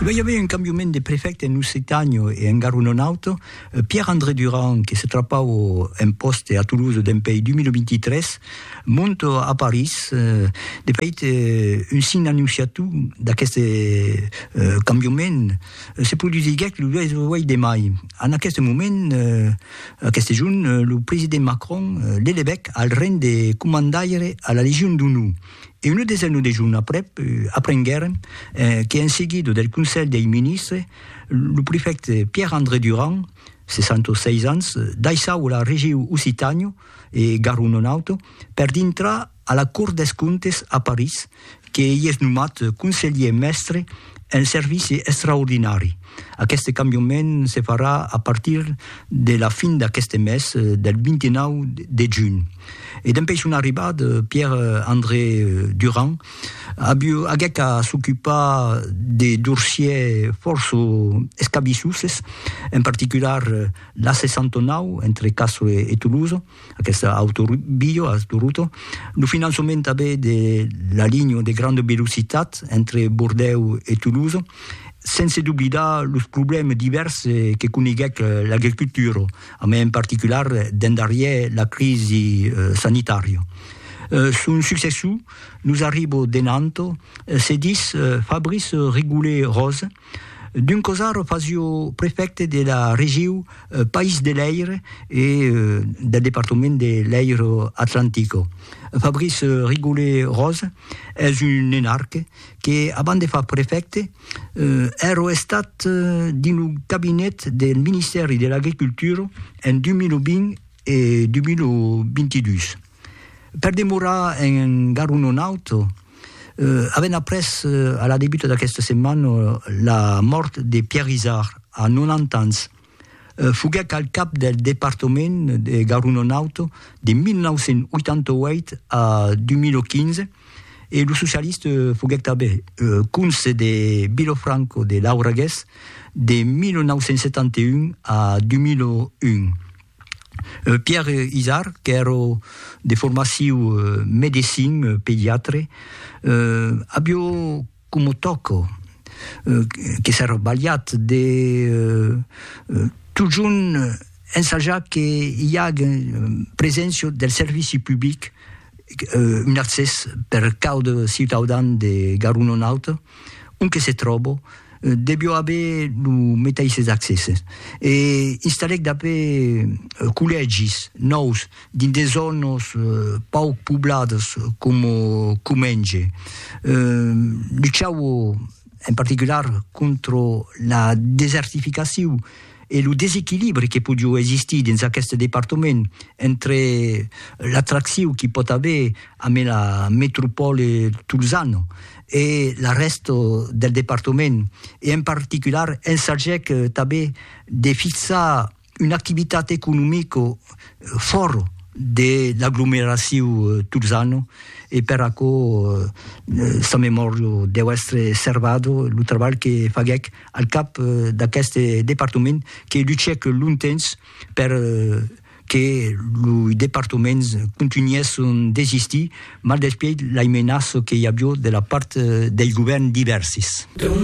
E ben i avei un cambiament de prefècte en Occitània e engar un auto, Pierre André Durand que se trapau un pòste a Toulouse dempèi 2023, mont a París, de fait un sign annonciatiu d'aqueste cambiament se produsiguèc lo 8 de mai, en aqueste moment, aqueste jorn, lo president Macron l'elevèc al reng de comandaire a la Legion d'Onor. e una desena de jorn aprèp aprenguèrem que en seguida del Conselh dei Ministres lo prefècte Pierre André Durand, 66 ans, daissava la regiu Occitània e Garro non auto per dintrar a la Cort des Comptes a París que i es nomat conselhier mèstre un servici extraordinari. Aqueste cambiament se farà a partir de la fin d'aqueste mes, del 29 de junh. E dempuèi son arribat, Pierre André Durand aguèt a s'ocupar de dorsièr fòrça escabissoses, en particular l'A69 entre Castres e Toulouse, Aquesta autovia a Toronto, lo finançament tanben de la linha de granda velocitat entre Bordèu e Toulouse, sense doblidar los problèmes divèrs que coneguèc l'agricultura, a mai en particular dens darrièr la crisi sanitària. Son successor nos arriba de Nantes, se ditz Fabrice Rigollet-Rose, D'un cosar fasio prefècte de la regiu País de Lèir e del departament de Lèiro Atlantico. Fabrice Rigolé Rose es un enarque que, abans de far prefècte, èrò estat dins lo cabinet del Ministèri de l'Agricultura en 2020 e 2022. Per demorar en Garonne un auto, avèm après a la debuta d'aquesta setmana la mòrt de Pierre Izard, a 90 ans. Foguèc al cap del departament de Garonne un auto de 1988 a 2015 e lo socialista foguèc tanben conse de Vilafranca de Lauragués de 1971 a 2001. Pierre Izard, qu'èra de formaciu medecin, pediatre, avió coma tòc que s'èra balhat de totjorn ensajar que i agen preséncia del servici public, un accès per cada ciutaudan de Garonne-Nord-Alta, On que se tròbo, devió aver lo metaisses accèsses e installèc dapé collègis nòus dins de zònas pauc pobladas coma Comenge. Luchava en particular contra la desertificacion e lo desequilibri que podió existir dins aqueste departament entre l'atraccion qu'i pòt aver amé la metropòle tolzana e la rèsta del departament, e en particular ensagèc tanben de fixar una activitat economica fòra de l'aglomeraciu tolzana e per aquò sa memòria deu èstre servada lo trabalh que faguèc al cap d'aqueste departament que luchèc longtemps per que lo departaments contunhèsson d'existir maldespièit lai menaço que i avió de la part dei govèrn divèrsis.